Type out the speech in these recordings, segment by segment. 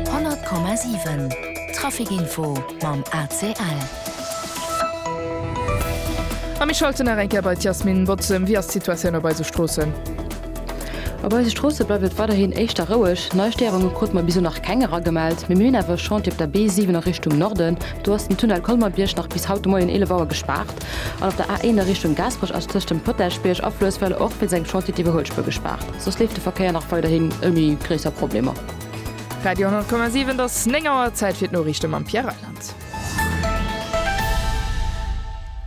100,7 Traficinfo mam ACL. A mir schalten nach eng Kéier bei d'Yasmine Bozem. Wéi ass d'Situatioun op eise Stroossen? Op eise Stroosse bleift et weiderhin éischter roueg. Nei Stéierunge krute mer bis elo nach keng eragemellt, mee mir hunn awer e Chantier op der B7 a Richtung Norden. Do ass den Tunnel Colmer-Bierg nach bis haut de Moien 11 Auer gespaart. An op der A 1 a Richtung Gaasperech ass tëscht dem Potäschbierg a Fluesswelle och wéinst engem Chantier d'Iwwerhuelspuer gespaart. Soss leeft de Verkéier nach weiderhin ouni gréisser Problemer. Radio 100,7 et ass 9 Auer, Zäit fir d'Noriichte mam Pierre Reyland.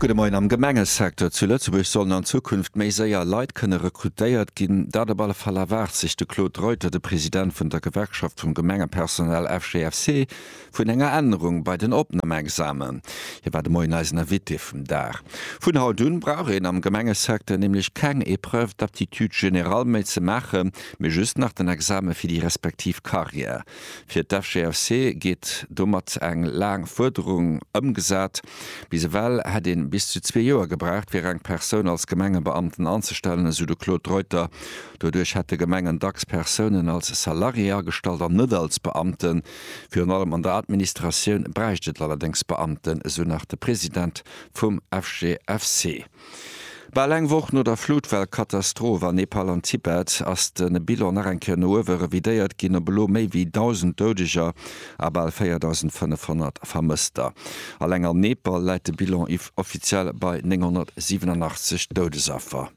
Gudde Moien, Am Gemengesecteur zu Lëtzebuerg sollen an Zukunft méi séier Leit kënne rekrutéiert ginn. Dat op alle Fall erwaart sech de Claude Reuter, de President vun der Gewerkschaft vum Gemengepersonal FGFC, Vun enger Ännerung bei den Opnamexamen. Hie war de Moien eisen Invité vum Dag. Vun haut un brauch een am Gemengesecteur nämlech keng Épreuve d'aptitude générale méi ze maachen, mee just nach den Examen fir déi respektiv Carrière. Fir d'FGFC geet domat eng laang Fuerderung ëmgesat. Bis ewell hätt een bis zu zwee Joer gebraucht fir eng Persoun als Gemengebeamten anzestellen, esou de Claude Reuter. Doduerch hätte Gemengen dacks Persounen als Salarié agestallt an net als Beamten. Virun allem an der Administratioun bräicht et allerdéngs Beamten, esou nach de President vum FGFC. Bal eng Woch no der Flutwell-Katastroph an Nepal an Tibet ass de Bilan nach eng Kéier no uewe revidéiert ginn, op elo méi wéi 1.000 Doudeger a bal 4.500 Vermësster. Alleng an Nepal läit de Bilan offiziell bei 987 Doudesaffer.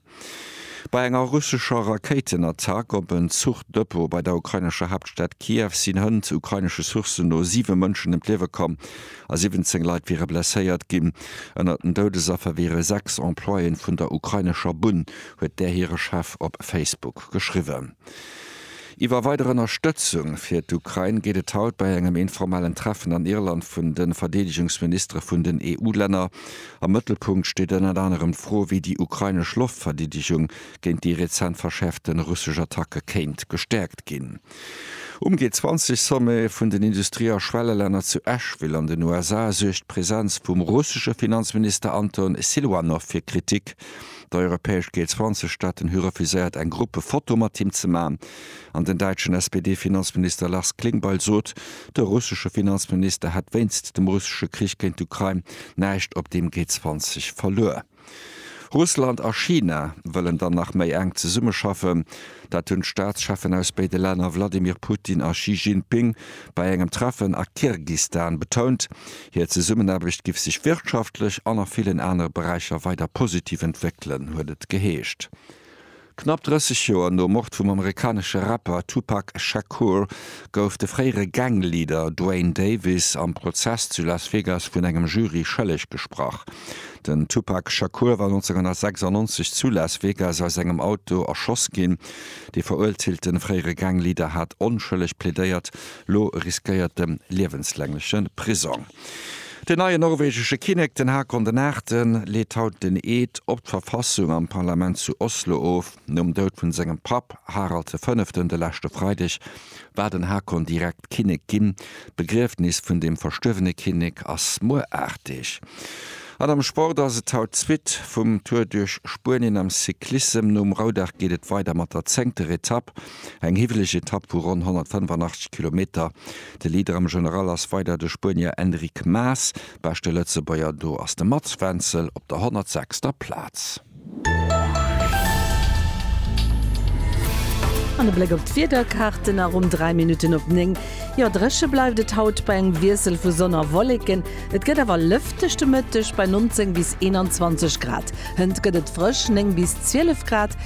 Bei enger russescher Rakéitenattack op en Zuchdepot bei der ukrainescher Haaptstad Kiew sinn hënt, ukrainesche Sourcen no, siwe Mënschen ëm d'Liewe komm a 17 Leit wiere blesséiert ginn. Ënner den Doudesaffer wiere sechs Employéen vun der ukrainescher Bunn, huet där hire Chef op Facebook geschriwwen. Iwwer weider Ënnerstëtzung fir d'Ukrain geet et haut bei engem informellen Treffen an Irland vun de Verdeedegungsministere vun den EU-Länner. Am Mëttelpunkt steet ënnert anerem d'Fro, wéi déi ukrainesch Loftverdeedegung géint déi rezent verschäerfte russesch Attacke kéint gestäerkt ginn. Um G20-Sommet vun den Industrie a Schwellelänner zu Asheville an den USA suergt d'Presenz vum russesche Finanzminister Anton Siluanow fir Kritik. Dei europäesch Géil 20 Staaten hu refuséiert eng Gruppefoto mat him ze man an den däitschen SPD-Finanzminister Lars Klingbeil sot, de russesche Finanzminister hätt wéinst dem russesche Krich géint d'Ukrain näischt op deem Géi 20 verluer. Russland a China wëllen dann nach méi enk zesummeschaffen. Dat hunn d'Staatscheffen aus béide Länner Wladimir Putin a Xi Jinping bei engem Treffen a Kirgistan betount. Hir Zesummenaarbecht giff sech wirtschaftlech an a villen anere Beräicher weider positiv entwéckelen, huet et geheescht. Knapp 30 Joer nom Mord vum amerikanesche Rapper Tupac Shakur gouf de fréiere Gang-Leader Duane Davis am Prozess zu Las Vegas vun engem Jury schëlleg gesprach. Den Tupac Shakur war 1996 zu Las Vegas aus engem Auto erschoss ginn. De veruerteelte fréiere Gang-Leader hat onschëlleg plädéiert, Lo riskéiert de liewenslängleche Prisong. Den neien norwegesche Kinnek, den Haakon den Aachten, leet haut den Eed op d'Verfassung am Parlament zu Oslo of. Nom Doud vun sengem Papp, Harald de Fënneften, de leschte Freideg war den Haakon direkt Kinnek ginn. D'Begriefnis vun dem verstuerwene Kinnek ass muer 8 Deeg. An am Sport ass et haut d'Suite vum Tour duerch Spuenien am Cyclissem. Nom Roudag geet et weider mat der zéngter Etapp. Eng hiwweleg Etapp vu ronn 185 Kilometer. De Leader am General ass weider de Spuenier Enric Mas. Beschte Lëtzebuerger do ass de Mats Wenzel op der 106. Plaz. An e Bléck op d'Wiederkaarten a ronn 3 Minutten op 9. Jo, dréche bleift et haut bei engem Wiessel vu Sonn a Wolleken. Et gëtt awer lëfteg de Mëtteg bei 19 bis 21 Grad. Hënt gëtt et frësch, 9 bis 12 Grad.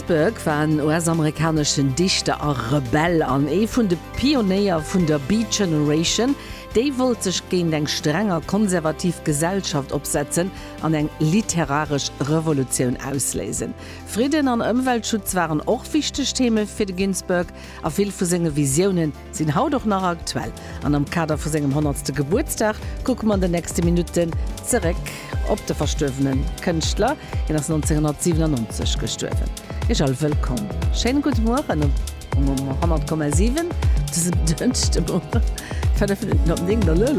Ginsberg war en US-amerikaneschen Dichter a Rebell an ee vun de Pionéier vun der Beat Generation. Déi wollt sech géint eng streng a konservativ Gesellschaft opsetzen an eng literaresch Revolutioun ausléisen. Fridden an Ëmweltschutz waren och wichteg Theme fir de Ginsberg a vill vu senge Visioune sinn haut och nach aktuell an am Kader vu sengem honnertste Gebuertsdag kucke mer an den nächste Minutten zeréck op de verstuerwene Kënschtler. Hien ass 1997 gestuerwen. Iech all wëllkomm, schéine gudde Mueren um 100,7 dësem Dënschdemorgen, 5 Minutten op 9.